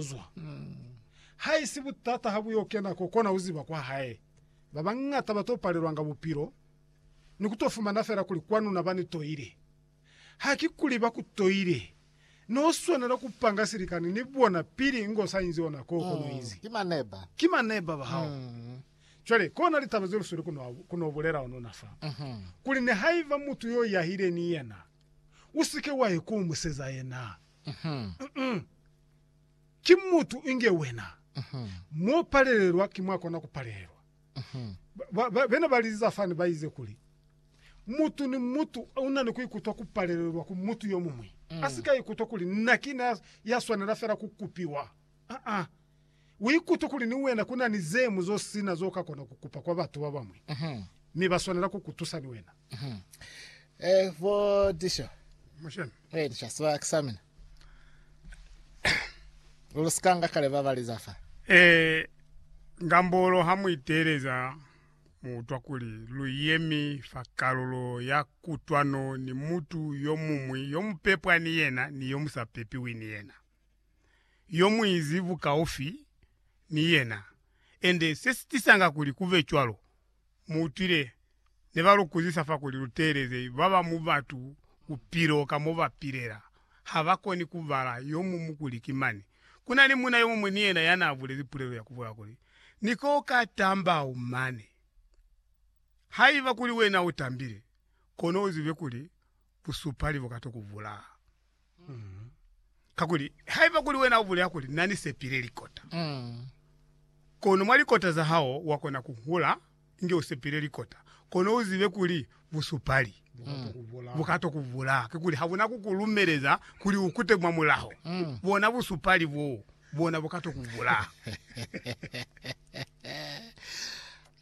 zwa. Haisi butata ha bu yo kena ko kona ku ziba kwa hae. Ba bañata ba to palelwanga bupilo ni ku to fumana fela kuli kwanu na ba ni toile. Haki kuli ba ku toile, no swanela ku panga silikani ni bona pili ngo sa inzi ona ko kono inzi. Ki maneba ba hao. Cwale, kona litaba ze lu sweli ku no, ku no bulela onuna fa, kuli nihaiba mutu yo yahile ni yena, u si ke wa ye ko museza yena. ki mutu inge wena, mo palelelwa ki mwa kona ku palelelwa. Ba, ba, bena ba liziza fani ba ize kuli, Mutu ni mutu una ni ku ikutwa ku palelelwa ku mutu yo muñwi, a si ka ikutwa kuli nna ki na ya swanela fela ku kupiwa. Ah-ah. Uikute kuli ni wena ku na ni ze ñwi zo si na zo ka kona ku kupa kwa batu ba bañwi, mi ba swanela ku ku tusa ni wena. Ngambolo ha mu iteeleza, mu utwa kuli lu yemi fa kalulo ya kutwano ni mutu yo muñwi yo mu pepwa ni yena ni yo mu sa pepiwi ni yena. yo mu izi bukaufi ni yena. Ende se si tisanga kuli ku be cwalo, mu utwile ne ba lu kuzisa fa kuli lu teeleze ba ba mu batu bupilo ka mo ba pilela. Ha ba koni ku bala yo mumu kuli ki mani. Ku na ni muuna yo muñwi ni yena ya n'a bulezi pulelo ya ku bola kuli, Ni k'o ka tambau mane. Haiba kuli wena u tambile, kono u zibe kuli busupali buka to ku bulaa. Kakuli haiba kuli wena u bulela kuli, Na ni sepile likota, kono mwa likota za hao wa kona ku hula inge u sepile likota, kono u zibe kuli busupali buka to ku bulaa. Kikuli ha bu na ku ku lumeleza kuli u kute mwa mulaho, bona busupali boo bona buka to ku bulaa.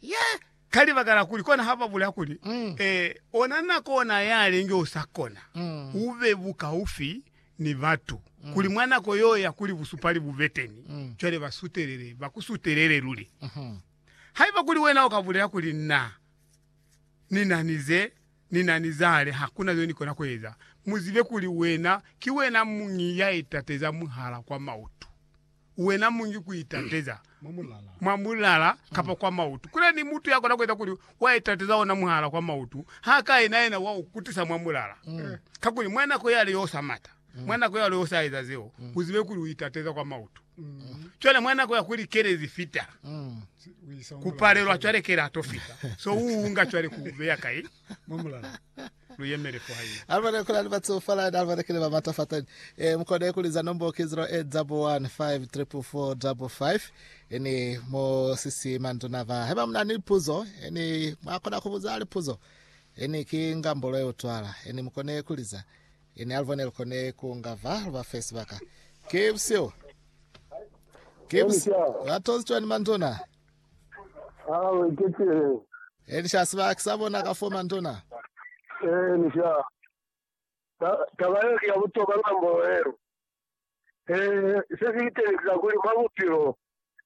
Yah! Ka libaka la kuli kona ha ba bulela kuli, Ee, ona na kona ya linge u sa kona ku be bukaufi ni batu, kuli mwa nako yeo ya kuli busupali bu be teni, cwale ba sutelele, ba ku sutelele luli. Haiba kuli wena u ka bulela kuli, Na, ni na ni ze, ni na ni zale, ha ku na zeo ni kona ku eza, mu zibe kuli wena, ki wena muñi ya itateza mwihala kwa mautu. Wena mungi ku itateza mwa mulala kapa kwa mautu. Kuli ni mutu ya kona ku eza kuli wa itateza ona mulala kwa mautu, ha ka ena yena wa u kutisa mwa mulala. Kakuli mwa nako yale yo sa mata, mwa nako yale yo sa eza zeo, u zibe kuli u itateza kwa mautu. Cwale mwa nako ya kuli kele zi fita, ku palelwa cwale kele ha to fita, so u unga cwale ku u beya kai? Mwa mulala. lu yemele fo hae. Alibone kuli ali batsuhufalani, alibone kili ba matafatani. E, mu kone ku liza nombo ki 08 double 1 5 triple 4 double 5. Ini, mo sisi manduna ba. Haiba muna ni lipuzo, ini, mwa kona ku buza lipuzo. Ini, ki ngambolo ye utwala. Ini, mu kone ku liza. Ini, alibone lu kone ku nga va, lu ba fe sibaka. Ki busihu. Ki busihu. Ba tozitweni manduna. Aa, u eketile. Elisha, Siba ki sa bona ka fo mantuna. Elisha, Ta, taba yeo ki ya butokwa lwa mbolo yeo. He, se si itelisisa kuli mwa bupilo,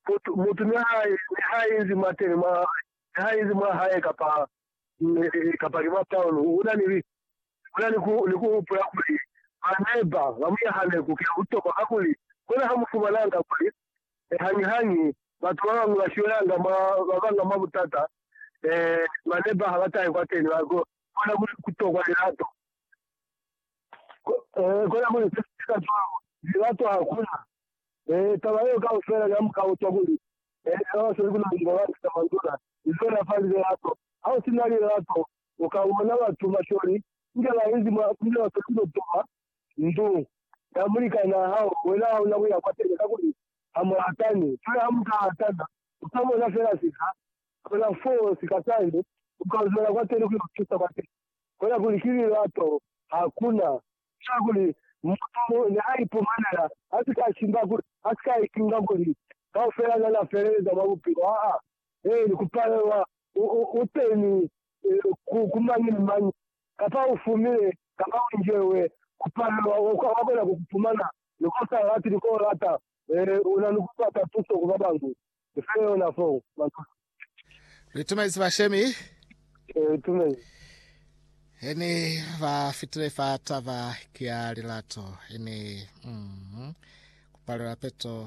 mutu, mutu niha, niha inzi mwateni mwa, niha inzi mwa hae kapa, kapa ki mwa Paulo, una ni, una ni ku, ni ku hupula kuli ba neba ba mu nyahaneku ki ya butokwa, kakuli bona ha mu fumananga kuli e, hañihañi batu babañwi bashwelanga mwa babanga mwa butata, e, mane ba habatahe kwateni, ba kona kuli kutokwa lilato. E, kona kuli se sika cwalo, lilato hakuna. E, taba yeo kaufela ya mukao cwa kuli, e, babasali kuna ni babanca ka manduna, izo ya fa lilato. Ha usina lilato, uka bona batu bashweli inge bainzi mwa, inge basali kutokwa ndu ya mulikan'a hao, wena ha una kuya kwateni, kakuli ha mu ratani. Cwale ha mu ka ratana, u ka bona fela sika, kona foo sika sani, u ka lumela kwateni ku yo tusa kwateni. Kona kuli ki lilato, ha ku na cwale kuli mutu ne a ipumanela a si ka shimba, kuli a si ka itunga kuli kaufela na na feleleza mwa bupilo. Aa, eeni, ku palelwa u teni ku, ku mañi ni mañi, kapa u fumile kapa u injewe, ku palelwa, wa, wa kona ku ku fumana, ni ko sa lati, ni ko lata, u na ni ku bata tuso ku babañwi. Ni file yona fo, matusi. Ni tumezi bashemi. Ni tumezi. He ni ba fitile fa taba ki ya lilato, ini, mm, ku palelwa peto,